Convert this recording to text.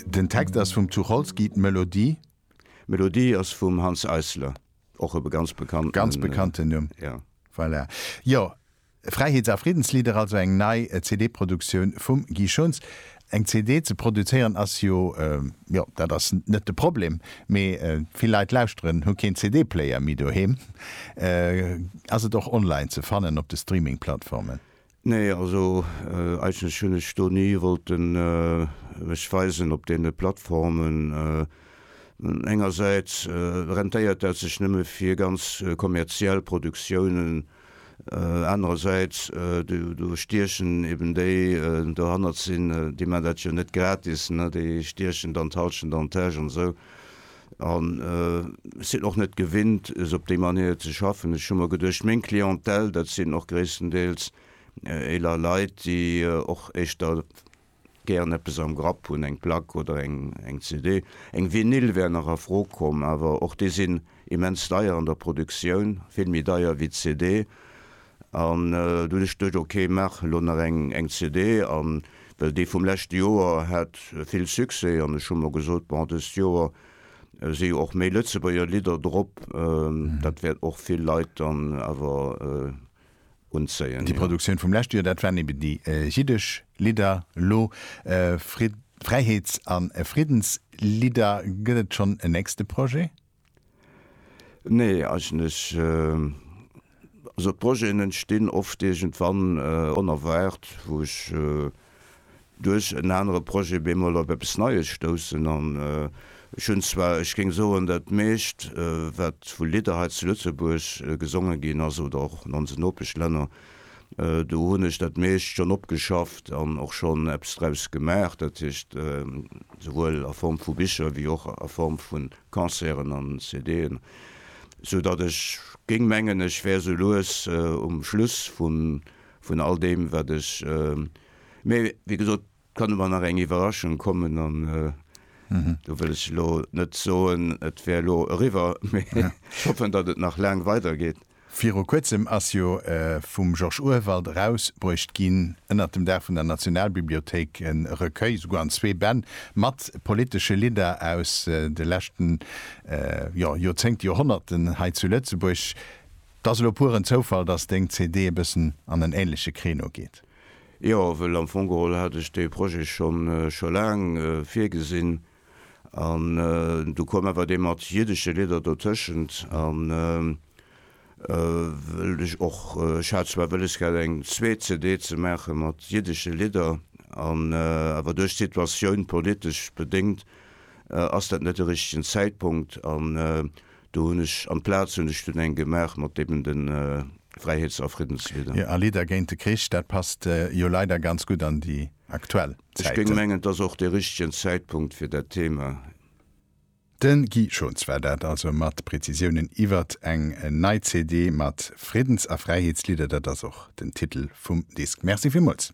Den Text ass vum Tucholsky, d'Melodie? D'Melodie ass vum Hanns Eisler, och e ganz bekannten. Ganz bekannten Numm. Ja. Voilà. Jo, Fräiheets a Friddenslieder, also eng nei CD-Produktioun vum Guy Schunz. Eng CD ze produzéieren ass jo, jo, dat ass net de Problem, mee vill Leit lauschteren, hu keen CD-Player méi doheem. Ass et och online ze fannen op de Streaming-Plattformen? Nee, also eigentlech hunn ech do ni wollten mech weisen op deene Plattformen. Engersäits rentéiert dat sech nëmme fir ganz kommerziell Produktiounen, anerersäits do stiechen eben déi dohannert sinn, déi man dat jo net gratis, déi stiechen dann d'Halschent an d'Täsch an esou. An ech sinn och net gewinnt, sou op déi Manéier ze schaffen. Ech hu mer geduecht, meng Clientèle, dat sinn och gréisstendeels eeler Leit, déi och éischter gären eppes am Grapp hunn, eng Plack oder eng CD. Eng Vinyl wär nach a Fro komm, awer och déi sinn immens deier an der Produktioun, vill méi deier wéi d'CD. An du hues dech geduecht, ok, maach elo nach eng eng CD. An well déi vum leschte Joer hat vill Succès an ech hu mer gesot, bon, dëst Joer si jo och méi Lëtzebuerger Lidder drop, dat wäert och vill Leit dann awer unzéien. Déi Produktioun vum leschte Joer, dat waren ebe déi jiddesch Lidder. Elo Frid-, Fräiheets a Friddenslidder. Gëtt et schonn en nächste Projet? Nee, eigentlech, also d'Projeten entstinn oft iergendwann onerwaart, wou ech duerch en anere Projet bemol op eppes Neies stoussen. An ech hunn zwar, ech géing soen, dat meescht, wat vu Lidder hei zu Lëtzebuerg gesonge ginn ass oder och an onse Nopeschlänner, do hunn ech dat meescht schonn opgeschafft an och schonn eppes draus gemaach, dat heescht souwuel a Form vu Bicher wéi och a Form vun. Concerten an CD'en, sou datt ech géing mengen ech wär sou lues um Schluss vun all deem wat ech, mee wéi gesot kann ëmmer nach eng Iwwerraschung kommen an do wëll ech elo net soen et wär elo eriwwer, mee ech hoffen datt et nach laang weidergeet. Viru kuerzem ass jo vum Georges Urwald erausbruecht ginn, ënnert dem Daach vun der Nationalbibliothéik, e Recueil, souguer an zwee Bänn, mat politesche Lidder aus de leschte Joerzéngten, Joerhonnerten hei zu Lëtzebuerg. Et ass elo pur en Zoufall, dass deng CD e bëssen an en änleche Créneau geet. Jo, well am Fong geholl hat ech dee Projet scho laang virgesinn. An du koum awer dee mat jiddesche Lidder dotëschent an wëllt ech och, ech hat zwar wëlles gehat eng zweet CD ze maache mat jiddesche Lidder an awer duerch d'Situatioun, politesch bedéngt, ass dat net de richtegen Zäitpunkt an do hunn ech amplaz hunn ech dunn eng gemaach mat eben de Fräiheets a Friddenslidder. Jo, a Lidder géint de Krich, dat passt jo leider ganz gutt an déi aktuell. Ech géing mengen, et ass och de richtegen Zäitpunkt fir dat Thema. De Guy Schons war dat also mat Prezisiounen iwwert eng nei CD mat Friddens a Fräiheetslidder, dat ass och den Titel vum Disk. Merci villmools.